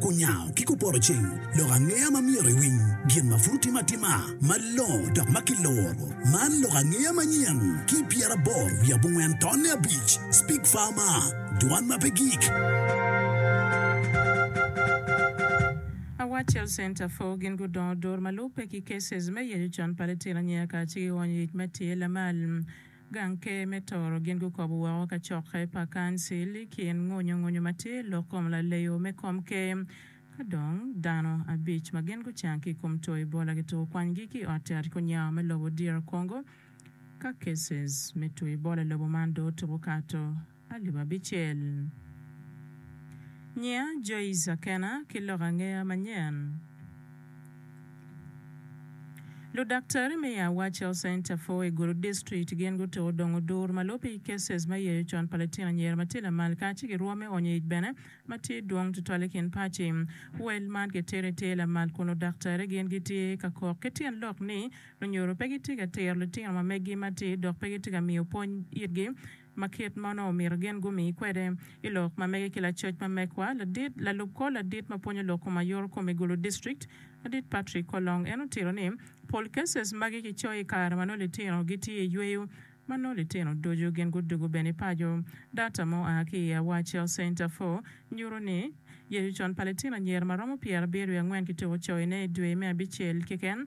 Kunyango ki kuporoceng lok angeya ma myero iwiny gin ma pud otime atima malongo dok ma kiloro. Man lok angeya manyen ki pyeraboro wiye abongwen tonne abic, Speak Farmer, Dwan ma pe gik. A Watch Health Center for Gin gudongo duru ma lubbe ki cases me yeco con pa litino anyira kacel ki onyo yec ma tye lamal. Gang Ker me Toro gin gukobo woko kacokke pa Kancil i kin ngonyongonyo ma tye lok kom laleyo me kom ker. Ka dong, dano abic ma gin gucang ki i kom two Ebola gituko kwanygi ki i Ot Yat Kunyawa me lobo DR Congo. Ka cases me two Ebola i lobo man dong otuko kato, pa jo ma bicel. Nyiya Joyce Akena ki lok angeya manyen. Ludaktari me i Awach Health Center for i Gulu District gin gutuko dong odur ma lubbe i cases me yeyo con pa litino anyira ma tye lamal ka ci girwo me onyo ic bene ma tye dwong tutwal i kin paci. Wel man kitito i ter lamal kun ludaktari gin gitye ka kok ki tyen lok ni lunyuru pe gitye ka tiro litino ma meggi ma tye dok pe gitye ka miyo pwony itgi ma kit ma onongo omyero gin gumi kwede. I lok ma mege ki lacoc ma mekwa, ladit, lalub kor ladit ma pwonyo lok kom ayoro kom i Gulu District, Ladit Patrick Kolong, en otito ni, Pol cases magi kicoyo i kare ma nongo litino gitye i yweyo, ma nongo litino ducu gin gudwogo bene i paco. Data ma oa ki i Awar Child Center for nyuto ni, Yecu con pa litino anyira ma romo pyerabiryo-ki-angwen kituko coyone i dwe me abicel keken,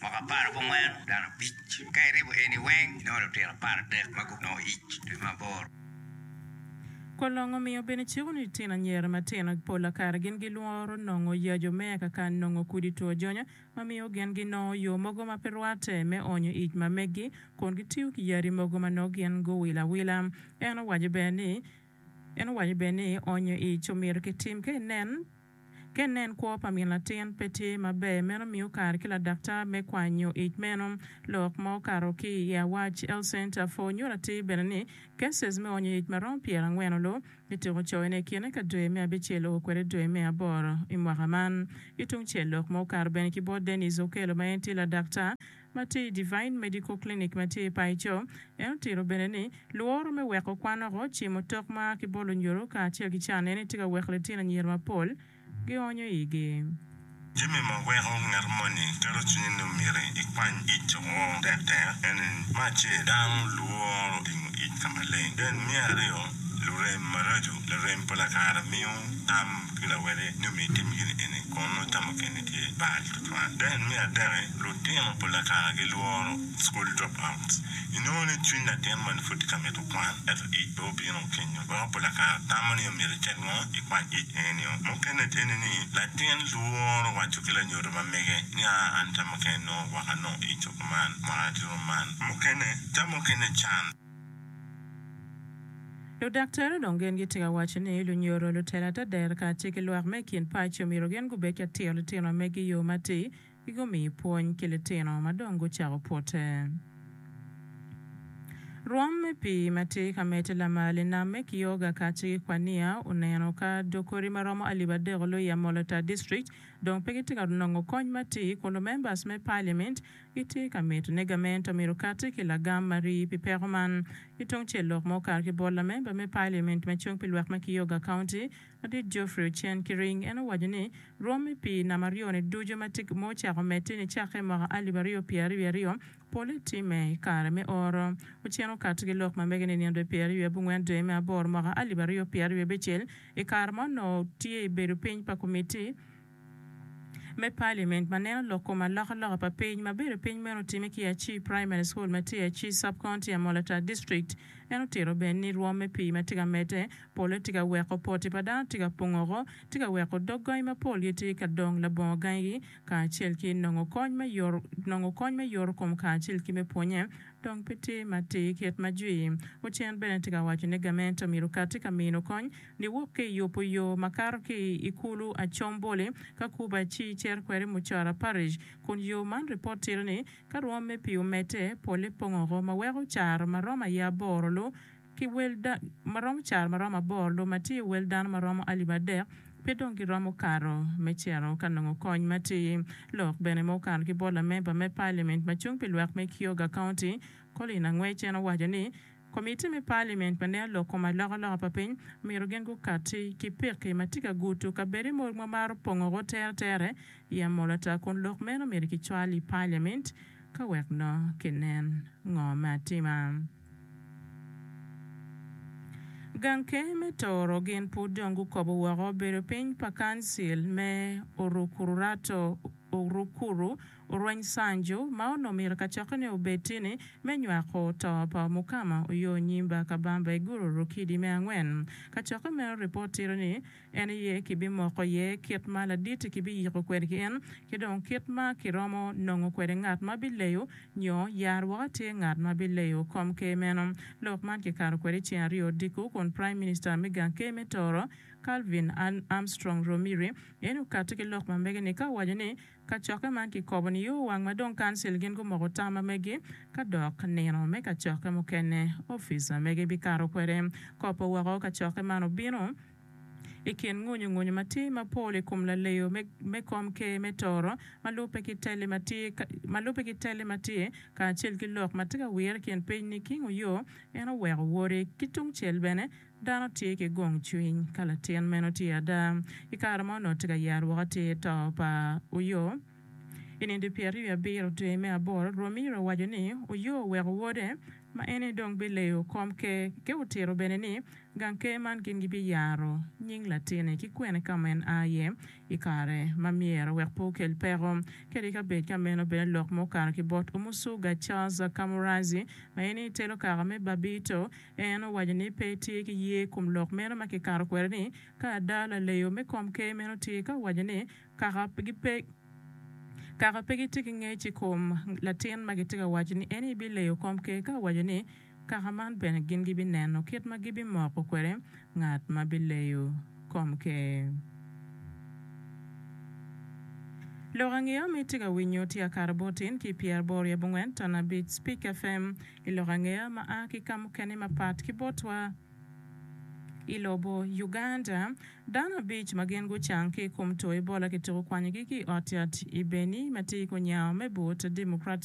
Mwaka apar ki angwen, dano abic ka iribo eni weng, inongo lutino apar ki adek ma gunongo ic i dwe me aboro. Kor long omiyo bene ciko ni litino anyira matino pol a kare gin gilworo nongo yaco me eka ka nongo kudi two jonyo ma miyo gin ginongo yo mogo ma pe rwatte me onyo ic ma meggi kun gitiyo ki yadi mogo ma nongo gin guwilo awila. En owaco bene ni onyo ic omyero kitim ka inen Ka inen kwo pa min latin pe tye maber, meno miyo kare ki ladaktar me kwanyo ic meno. Lok ma okato ki i Awac, Health Center for nyuto atir bene ni cases me onyo ic ma romo pyera angwen olu ni tuk ocoyo ne i kine ka dwe me abicel oo kwede dwe me aboro i mwaka man. Ki tung cel, lok ma okato bene ki bot Dennis Okello ma en tye ladaktar, ma tye i Devine Medical Clinic ma tye i Paico. En otito bene ni, Lworo me weko kwan oko, cimo tok ma a ki bol onyuru kacel ki can eni tye ka weko litino anyira mapol gionyo igi. Jami ma weko ngat moni keto cwinye ni omyero ikwany ic oko tektek ene ni, Me acel, dano lworo tingo ic ka maleng. Then me aryo, lurem maraco. Larem pala kare miyo tam. Pi lawede nyo mi itim gin eni, kun nongo tamo keni tye bal tutwal. Deen me adek-ki, lutino pa Lakana gilworo school dropouts. Inongo ni cwiny latin moni pud tye ka mito kwan, ento ic pe obino kenyo. Weko pa Lakana tamo ni omyero icit mo ikwany ic en nio. Mukene eni ni, latin lworo waco ki lanyodo ma mege ni, Aa, an tamo keni nongo gwaka nongo ico kuman, mwaka aye tye rom man. Mukene tamo kene can. Ludaktari dong gin gitye ka waco ni lunyodo, lutela ata dero kacel ki lwak me i kin paco myero gin gubed ka tiro litino megi i yo matir ki gumiyi pwony ki litino ma dong gucako pwote. Rwom me pii ma tye ka medde lamal i nam me Kioga kacel ki Kwania oneno ka dog kodi ma romo alip adek oloyo i Amolo Tar District dong pe gitye ka nongo kony matir kun lumembers me Parliament Itye ka mito ni gamente omyero okatti ki lagam ma rii pi peko man? Ki tungcel lok ma okato ki bot lamemba me Paliament ma cung pi lwak me Kioga County, Madit Geoffrey Ochen Kiring, en owaco ni rwom me pii nam aryo-ni ducu ma tye ma ocako medde ni cakke i mwaka alip aryo pyera aryo wiye aryo pole timme i kare me oro. Ochen okatti ki lok ma mege ni i nino dwe pyera aryo wiye abongwen dwe me aboro mwaka alip aryo pyera aryo abicel, i kare ma onongo tye i bedo piny pa komitti, me Paliment ma neno lok kom alokaloka pa piny ma bedo piny meno otime ki Achii Primary School ma tye i Achii Sub-County, Amolatar District. En otito bene ni rwom me pii ma tye ka medde polle tye ka weko poti pa dano tye ka pongoko, tye ka weko dog gangi mapol gitye ka dong labongo gangi kacel ki nongo kony me yoto nongo kony me yoto kom kacel ki me pwonye dong pe tye matir kit ma Jwi. Ocen bene tye ka waco ni gamente omyero okati ka mino kony Giwok ki i yubo yo ma kato ki i Ikulu Achombolye, ka Cuba ci cito kwede i Mucara Parish, kun yo man ripot tito ni ka rwomme pi omedde, polle pong oko ma weko caro ma romo aye aboro lu ki wel da, ma romo caro ma romo aboro lu ma tye wel dano ma romo alip adek pe dong giromo kato me cito ka nongo kony ma ti. Lok bene ma okato ki bot lamemba me Parliament ma cung pi lwak me Kioga County, Colin Angwec en owaco ni, Komitti me Paliment pa neno lok kom alokaloka pa piny omyero gin gukatti ki pekki ma tye ka guto kabedo mo ma maro pongo woko teretere i amol ata kun lok meno myero kicwal i Paliment ka wek nongo kinen ngo me atima. Gang Ker me Tooro gin pud dong gukobo woko bedo piny pa Kancil me Orukuru Rato Orukuru Orweny Sanju ma onongo myero kacokkene obed tye ni me nywako to pa Omukama Oyoo Nyimba Kabamba i Guru Rukidi me angwen. Kacokke meno ripot tito ni en aye kibimoko iye kit ma laditi kibiyiko kwede ki en ki dong kit ma kiromo nongo kwede ngat ma bileyo nyo yar woko atir ngat ma bileyo kom ker meno. Lok man kikato kwede ceng aryo odiko kun Prime Minister me gang ker me Toro Calvin Armstrong Romiri en okati ki lok ma mege ni ka owaco ni Kacokke man kikobo ni owang ma dong Kancil gin gumoko tam ma megi ka dok nino me kacokke mukene opica megi bikato kwede. Kopo woko kacokke man obino i kin ngunyu ngunyu ma tye ma pol i kom laleyo me me kom ker me Toro ma lubbe ki telli ma tye ma lubbe ki telli ma tye kacel ki lok ma tye ka wire i kin piny ni King Oyoo en oweko wode ki tungcel bene Dano tye ki gong cwiny ka latin meno tye ada. I kare ma onongo tye ka yero woko atir to pa Oyo, i nino pyeraryo wiye abiro dwe me aboro, Romero owaco ni Oyo oweko wode ma en ni dong bileyo kom ker ki otito bene ni gang ker man gin gibiyaro nying latine ki kwene ka ma en a iye i kare ma myero wek pe okel peko kede i kabed ka meno bene lok ma okato ki bot Omusuga Charles Kamuranzi ma en ni telo kaka me Babito En owaco ni pe etye ki ye i kom lok meno ma kikato kwede ni ka ada laleyo me komker meno tye ka owaco ni kaka pe kaka pe gitye ki ngec i kom latin ma gitye ka waco ni eni bileyo komker ka owaco ni kaka man bene gin gibineno kit ma gibimoko kwede ngat ma bileyo komker. Lok ange-o ma itye ka winyo tye akato bot in ki pyeraboro i abongwen ton abic Spik FM. I lok angeya ma a ki ka mukene mapat ki botwa i lobo Uganda, dano abic ma gin gucang ki i kom two Ebola kituko kwanyogi ki i ot yat i Beni ma tye i Kunyaho me but Democratic